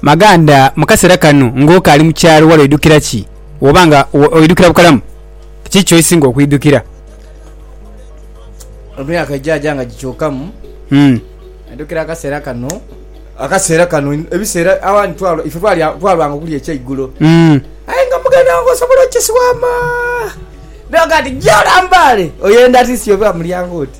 Maganda, mu kaseera kano ng'okaali mu kyalo wali oidukira ki? Woba nga oidukira bukalamu, kiki ky'oisinga okwidukira? Emyaka egyaaja nga gikyukamu, hmm. ndukira akaseera kano. Akaseera kano ebiseera awandi ife twalwanga okulya ekyeigulo, hmm. aye nga muganda wange osobola okisiwama naga nti gya olambaale oyenda ati nsi oba mulyango oti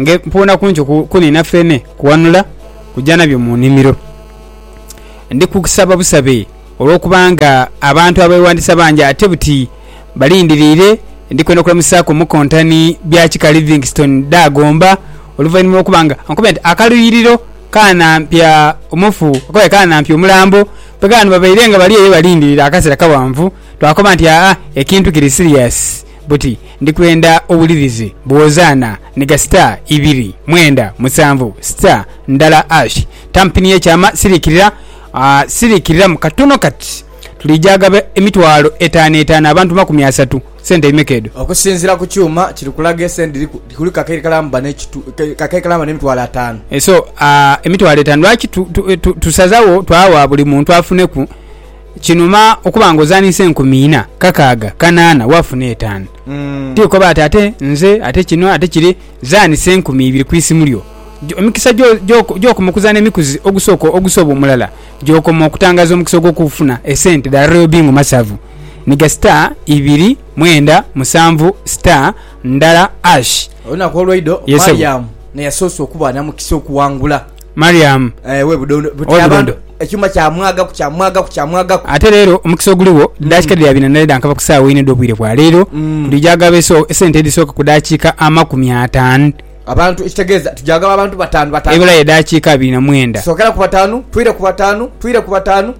Nge mpuuna kungi kuniina feene kuwanula kuja nabyo mu nimiro. Ndi kukusaba busabe olwokuba nga abantu abewandiisa bangi ate buti balindiriire. Ndi kwenda kulamusaaku omukontani Byakika Livingstone Dagomba oluvainhuma lwokuba nga ankubye nti akaluyiriro kanampya omufu oba kanampya omulambo bweganhuba baire nga bali eyo balindiriire akaseera kawanvu twakoba nti aa ekintu kiri siriyasi. buti, Ndi kwenda owulirize bw'ozaana ni ga star ibiri, mwenda, musanvu, star, ndala ash, tampini y'ekyama siriikirira, siriikiriramu katono kati. Tuliija agaba emitwalo etaano etaano abantu makumi asatu. Sente bimeka edho? Okusinziira ku kyuma kiri kulaga esente dhiriku, kuliku kakekalamba n'emitwalo ataano. So, emitwalo etaano. Lwaki tusazagho twawa buli muntu afuneku? Kinuma okuba nga ozanise enkumi ina, kakaaga, kanaana wafuna etaanu. Ti koba ati ate nze ate kino ate kiri, zanisa enkumi ibiri ku isimu lyo. Emikisa gyokoma okuzana emikuzi ogusooka ogusoba omulala gyokoma okutangaza omukisa ogwokufuna esente dha Royal Bingo Masavu. Niga star ibiri mwenda musanvu star ndala ash. Olunaku olweidho Mariam neyasoose okuba namukisa okuwangula. Mariamu owe Budondo. Ekyuma kyamwagaku kyamwagaku kyamwagaku. Ate leero omukisa oguligho daakika mm. dhiri abiri na nane dhankava ku saawa ina edh'obwire bwa leero mm. tujaagaba esente edhisooka ku daakika amakumi ataanu abantu ekitegeeza tujagaba abantu batanu batanu ebula yedakiika abiri na mwenda sokera ku batanu twire ku batanu twire ku batanu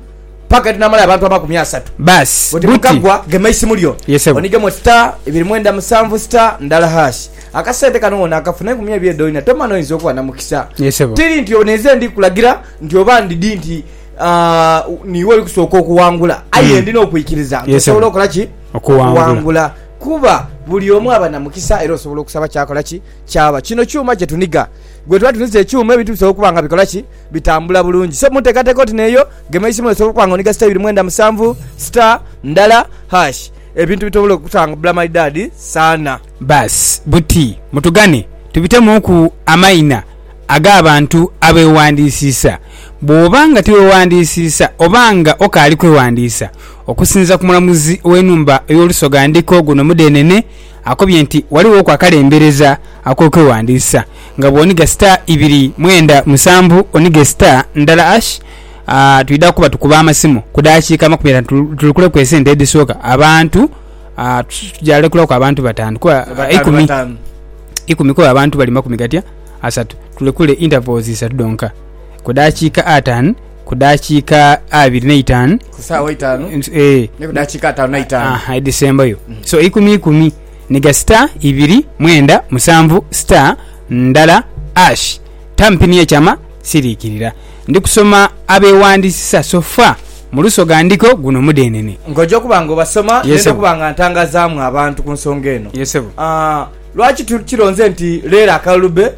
paka tinamala abantu amakumi asatu basi buti mukagwa gema isimu lyo onigemu star ebiri mwenda musanvu star ndala hash Akasente kano wonakafuna enkumi ebiri edho ina tomana oyinza okuba namukisa. Tiri nti ono enze ndi kulagira nti oba ndidi nti uh, niwe oli kusooka okuwangula aye hmm. ndina okwikiriza nti osobola okola ki okuwangula kuba buli omu aba na mukisa era osobola okusaba kyakola ki kyaba kino kyuma kyetuniga gwe tuba tuniza ekyuma ebintu bisobola okuba nga bikola ki bitambula bulungi so munteekateeka oti neeyo gema isimu osobola okuba nga oniga sita ibiri mwenda musanvu sita ndala hash ebintu bitobola okutambula malidaadi saana Baasi buti mutugane tubitemuuku amaina ag'abantu abeewandiisiisa. Bw'oba nga tiweewandiisiisa oba nga okaali kwewandiisa, okusinziira ku mulamuzi w'enhumba ey'Olusoga Ndiko guno Mudeenene akobye nti waliwoku akalembereza ak'okwewandiisa nga bw'oniga star ibiri mwenda musanvu onige star ndala hash. Twidha kuba tukuba amasimu ku daakiika makumi ataanu tutukuleku esente edhisooka abantu. Ah, tu- tuja lekulaku abantu bataanu kuba ah, Bataanu, ikumi bataanu. ikumi kuba abantu bali makumi gatya asatu tulekule intervals isatu dhonka ku dakiika ataanu ku dakiika abiri n'eitaanu ku saawa itaanu Ns- eh, ne ku dakiika ataano naitaano aha, edhisembayo so ikumi ikumi niga star ibiri mwenda musanvu star ndala ash tampini ekyama siriikirira Ndi kusoma abeewandiisisa so fa mu luso ga ndiko guno mudeenene. Nga oja okuba nga obasoma, ndenda okuba nga ntangazaamu abantu ku nsonga eno. Lwaki tukironze nti leero akalulu be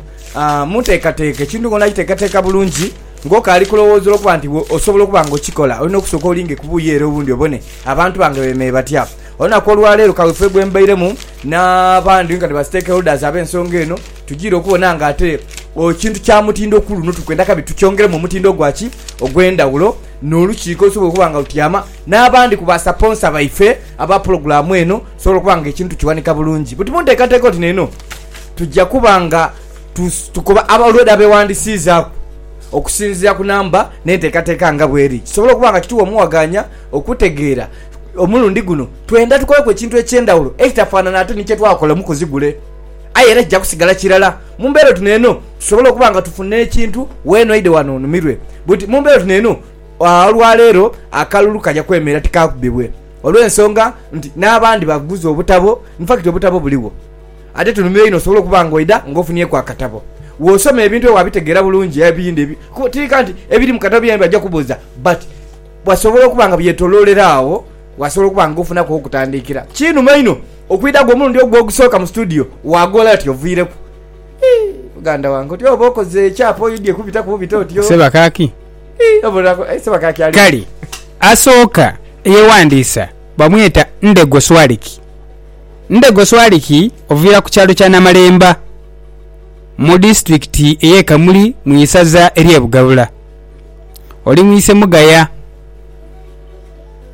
mu nteekateeka? Ekintu ng'onaaki teekateeka bulungi ng'okaali kulowooza olw'okuba nti osobola okuba ng'okikola, olina okusooka olinge ku buuyi ere obundi obone abantu bange beemeire batya. Olunaku olwa leero kaweefube gwe mbairemu n'abandi nkani ba stakeholders ab'ensonga eno, Tujiire okubona nga ate ekintu kya mutindo ku luno tukwenda kabi tukyongeremu omutindo ogwa ki ogw'endhawulo n'olukiiko lusobola okuba nga lutyama n'abandi ku basaponsa baife aba pulogulaamu eno tusobola okuba nga ekintu tukiwanika bulungi. Buti mu nteekateeka oti n'eno tujja kuba nga tukoba abalwade abeewandisiizaaku okusinziira ku namba n'enteekateeka nga bweri kisobole okuba nga kituwa omuwagaanya okutegeera omulundi guno twenda tukoleku ekintu eky'endhawulo ekitafaanana ate ni kye twakola mu kuzigule. Aye era kija kusigala kirala mu mbeera oti n'eno tusobole okuba nga tufuna ekintu weena oidhe wano onumirwe. Buti mu mbeera oti n'eno olwaleero akalulu kaja kwemerera tikaakubibwe olw'ensonga nti n'abandi baguze obutabo. In fact obutabo buligho. Ate tunumirwa inho osobole okuba nga oidha nga ofunyeeku akatabo w'osoma ebintu aye waabitegeera bulungi ebindi kuba otiika nti ebiri mu katabo byona byona baja kubuuza but wasobola okuba nga byetoloolera agho wasobola okuba nga ofunaku agh'okutandiikira. Kinuma inho Okwidha gwo omulundi ogwo ogusooka mu situdiyo, waagoola oti oviireku. Hii, muganda wange, oti oba okoze ekyapa oidhie kubitaku bubita oti o. Sebakaaki? Hii, oba onaku, aye Sebakaaki ali. Kale asooka eyewandiisa bamweta Ndego Swaliki. Ndego Swaliki oviira ku kyalo kya Namalemba mu disiturikiti ey'e Kamuli mu isaza ery'e Bugabula. Oli mu isemugaya.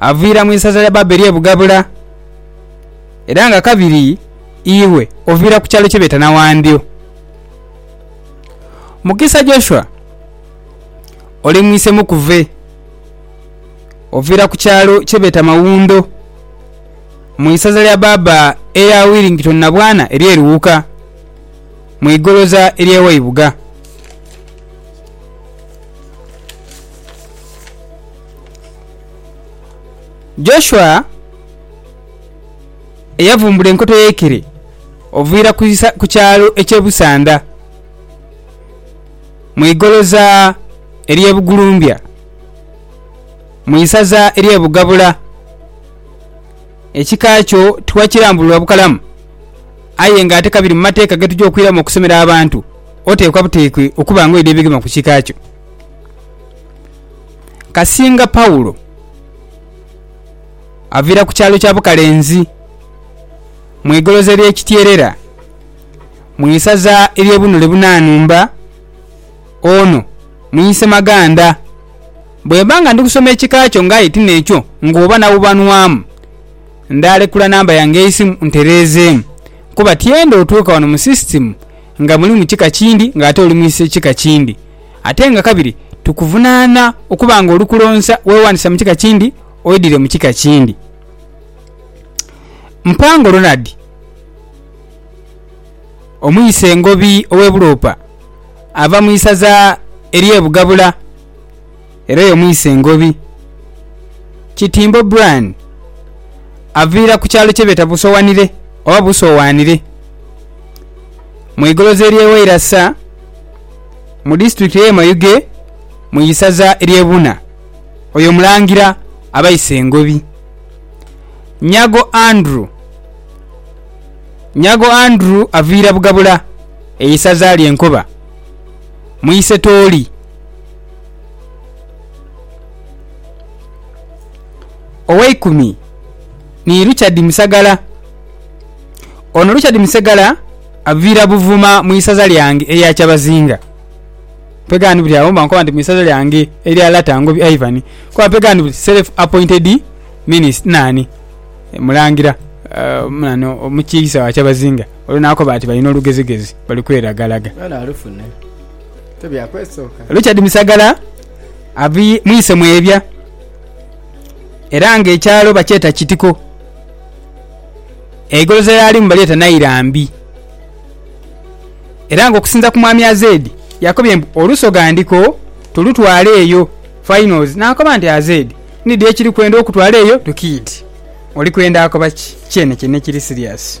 aviira mu isaza lya Babeli e Bugabula, era nga kabiri iwe oviira ku kyalo kye beeta Nawandyo. Mukisa Joshua, oli mwise Mukuve, oviira ku kyalo kye beeta Mawundo, mu isaza lya baaba erya Willington Nabwana ery'e Luwuka, mu igoloza ery'e Waibuga. Joshua eyavumbula enkoto y'eikere oviira ku kyalo eky'e Busanda mu igoloza ery'e Bugulumbya mu isaza ery'e Bugabula. Ekika kyo tiwakirambulula bukalamu aye ng'ate ka biri mu mateeka ge tuja okwiramu okusomera abantu, oteekwa buteekwa okuba ng'oidha ebigema ku kika kyo. Kasinga Paulo avira ku kyalo kya Bukalenzi mu igoloza erye Kityerera mu isaza erye Bunule Bunanumba, ono mwise maganda. Bwemba nga ndi kusoma ekika kyo nga aye tinekyo ng'oba nawubanwamu, ndaalekula namba yange y'eisimu ntereezeemu kuba tyenda otuuka wano mu sisitimu nga mulimu kika kindi ng'ate oli mwise kika kindi. Ate nga kabiri tukuvunaana okuba nga oli kulonsa wewandisa mu kika kindi oidhire mu kika kindi. Mpango Ronald, omuyisa engobi ow'e Buloopa ava mu isaza ery'e Bugabula. Era oyo mwise Ngobi, Kitimbo Brian, aviira ku kyalo kyebeeta Busowanire oba Busowanire mu igoloza ery'e Wairasa mu disitulikiti ey'e Mayuge mu isaza ery'e Buna. Oyo Mulangira aba ise Ngobi. Nyago Andrew, Nyago Andrew aviira Bugabula e isaza lye Nkoba mu ise Tooli. Oweikumi ni Richard Musagala. Ono Richard Musegala avira Buvuma mu isaza lyange erya Kyabazinga. Mpegha ni buli agho mba nkoba nti mu isaza lyange erya Lata Ngobi Ivan kuba mpegha ni buli self appointed minisita nani mulangira nani omukiise wa Kyabazinga. Oyo nakoba ati balina olugezigezi bali kweragalaga. Richard Misagala ava mwise Mwebya era nga ekyalo bakyeta Kitiko. Eigoloza lyalimu balyeta Nairambi. Era nga okusinza ku Mwami Azeedi yakobye mbu olusoga ndiko tulutwale eyo, Finals, nakoba nti Azeedi nidhi ekiri kwenda okutwala eyo Rukidi. Oli kwenda akoba ki? Kyene kyene ekiri serious.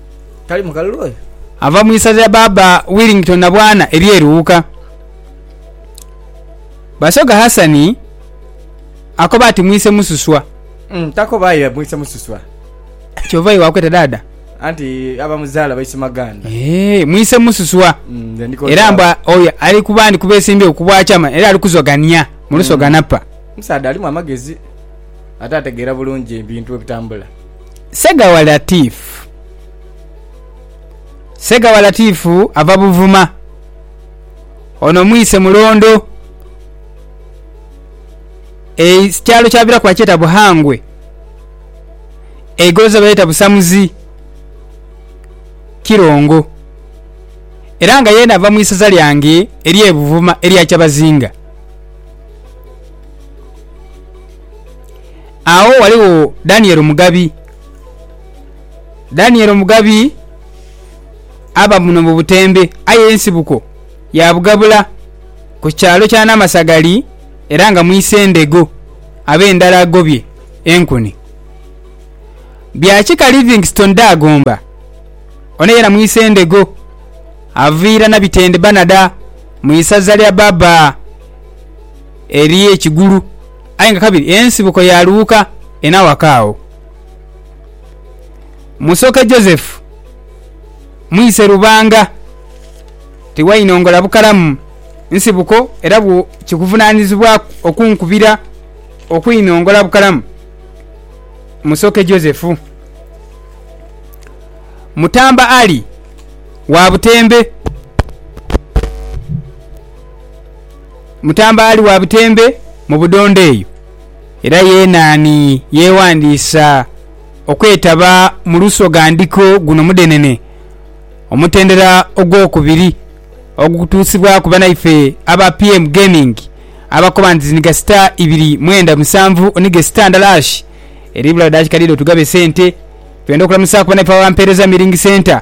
Tali mukalulu oyo? Ava mu isaza lya Baaba Willington Nabwana ery'e Luuka. Basoga Hassan akoba ati mwise mususwa. Mm, takoba aye mwise mususwa. Kyova iwe wakweta daada? Anti abamuzaala baise maganda. Eeh, mwise mususwa. Mm, nze ndiko Era ntawo. mbwa oyo ali ku bandi kubesimbyewo ku bwachama era ali kuzogania mu lusoga napa. Omusaadha alimu amagezi ate ategeera bulungi ebintu bwe bitambula. Segawa Latif Segawa Latif ava Buvuma. Ono mwise Mulondo. Ekyalo kyaviraku bakyeta Buhangwe. Eigolosa balyeta Busamuzi Kirongo. Era nga yeena ava mu isaza lyange erye Buvuma erya Kyabazinga. Agho ghaligho Daniel Omugabi. Daniel Omugabi aba buno mu Butembe aye ensibuko ya Bugabula ku kyalo kya Namasagali era nga mwise Ndego abe ndala agobye enkuni. Bya kika Livingstone Daagomba ono yena mwise Ndego aviira Nabitende Banada mu isaza lya Baba eri e Kigulu. Aye nga kabiri ensibuko ya Luuka ena waka agho. Musoke Joseph mwise Lubanga tiwainongola bukalamu nsibuko era bwo kikuvunaanizibwa okunkubira okuinongola bukalamu Musoke Joseph. Mutamba Ali wa Butembe. mutambaali wa butembe mu budhondo eyo, era yeena ni yeewandiisa okwetaba mu lusoghandhiko guno mudhenene, omutendera ogwokubiri ogukutuusibwaku banaife aba PM Gaming abakoba nti niga sita ibiri mwenda musanvu nige sita ndala hash eri bula dakika dhidho tugabe sente. Twenda okulamusaaku banaife abampeereza Milling Centre.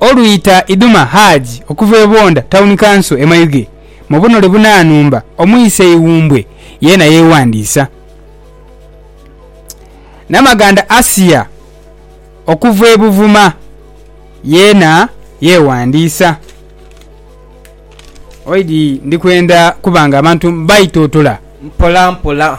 Olwita Iduma Haji okuva e Bwonda Tawuni Kanso e Mayuge mu bunhole bunanhumba omwise Iwumbwe yeena yeewandiisa. Namaganda Asia okuva e Buvuma yeena yeewandiisa. Oidhi ndi kwenda kuba nga abantu mbaitotola. Mpolampola.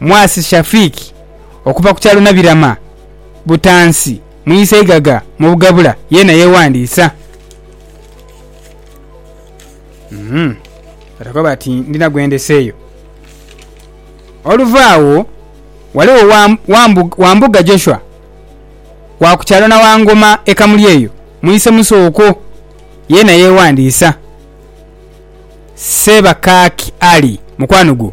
Mwasi Shafiq okuva ku kyalo Nabirama, Butansi mu Isaigaga mu Bugabula yeena yeewandiisa. Batakoba bati ndina gwe ndeseeyo. Oluva agho ghaligho Wambuga Joshua wa ku kyalo Nawangoma e Kamuli eyo mu Isemuso okwo yeena yeewandiisa. Sseebakaaki Ali, mukwano gwo.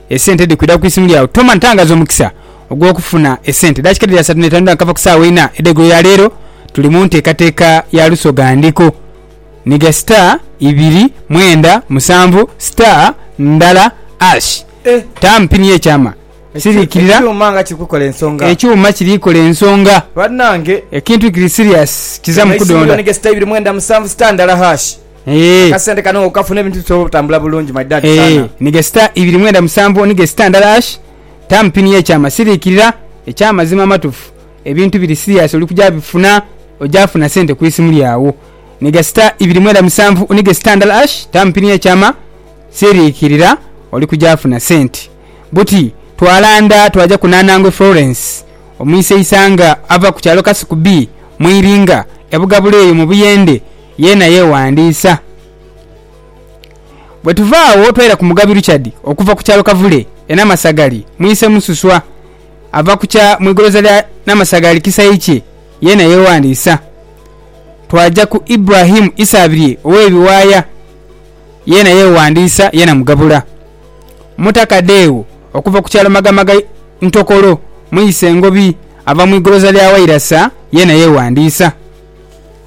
Esente dhikwidha ku isimu lyagho. Toma ntangaza omukisa ogw'okufuna esente. Daakika dhiri asatu n'etaanu edhakava ku saawa einha edh'eigulo ya leero, tuli mu nteekateeka ya Lusoga Ndiko. Nhiga star ibiri mwenda musanvu star ndala ash. Taamu pini y'ekyama. Siriikirira. Ekyuma nga kiri kukola ensonga. Ekyuma kiri kola ensonga. Banange. Ekintu kiri serious. Kizamu kudonda. Gema isimu lyo nhiga star ibiri mwenda musanvu star ndala ash. Akasente kano nga okafuna ebintu bisobola obutambula bulungi my dad sana. Niga sita ibiri mwenda musanvu niga sita ndala ash tamu pini ye kyama sirikirira ekya mazima amatufu ebintu biri serious oli kuja bifuna oja funa sente kwisimu lyawo niga sita ibiri mwenda musanvu niga sita ndala ash tamu pini ye kyama sirikirira oli kuja funa sente buti twalanda twaja ku nanangwe Florence omwise isanga ava ku kyalo kasuku bii mu iringa ebugabula eyo mu buyende Yeena yeewandiisa. Bwe tuva agho twaira ku Mugabi Richard okuva ku kyalo Kavule e Namasagali, mwise Mususwa ava ku kya mu igoloza lya Namasagali Kisaikye yeena yeewandiisa. Twaja ku Ibrahim Isaabirye ow'e Biwaaya yeena yeewandiisa yeena mugabula. Muta Kadeewo okuva ku kyalo Magamaga Ntokolo, mwise Ngobi ava mu igoloza lya Wairasa yeena yeewandiisa.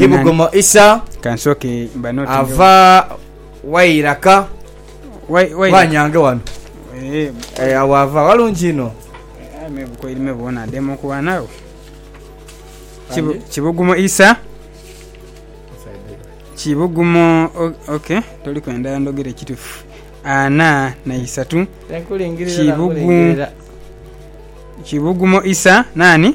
Kibugumo Isa ava Wairaka ghanyange ghano ee agho ava ghalungi inho. Kibugumo Isa kibugumo ok toliku endhala ndhogere kitufu ana na isatu kibugumo Isa nani?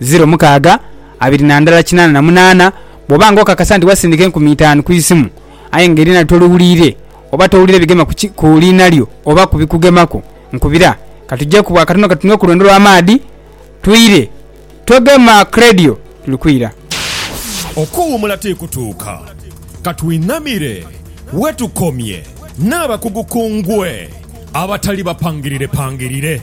ziro mukaaga abiri na ndala kinaana na munaana, bw'oba nga okakasa nti wasindika enkumi itaanu ku isimu aye nga eriina lyo toliwuliire oba towulira bigema ku ki, ku liina lyo oba ku bikugemaku, nkubira ka tujeku bw'akatono ka tunwe ku lwendo lwa maadhi twire. Togema ku leediyo, tuli kwira. Okuwuumula ti kutuuka. Ka twinamire we tukomye n'abakugu ku ngwe abatali bapangirirepangirire.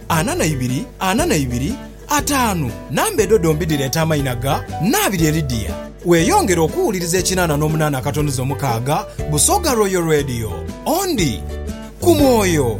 Ana na ibiri, ana na ibiri, ataanu. Namba edho dhombi dhireeta amaina ga Nabiri Elidia. Weeyongere okuwuliriza ekinaana n'omunaana akatonoza omukaaga, Busoga Royal Radio. Ondi ku mwoyo.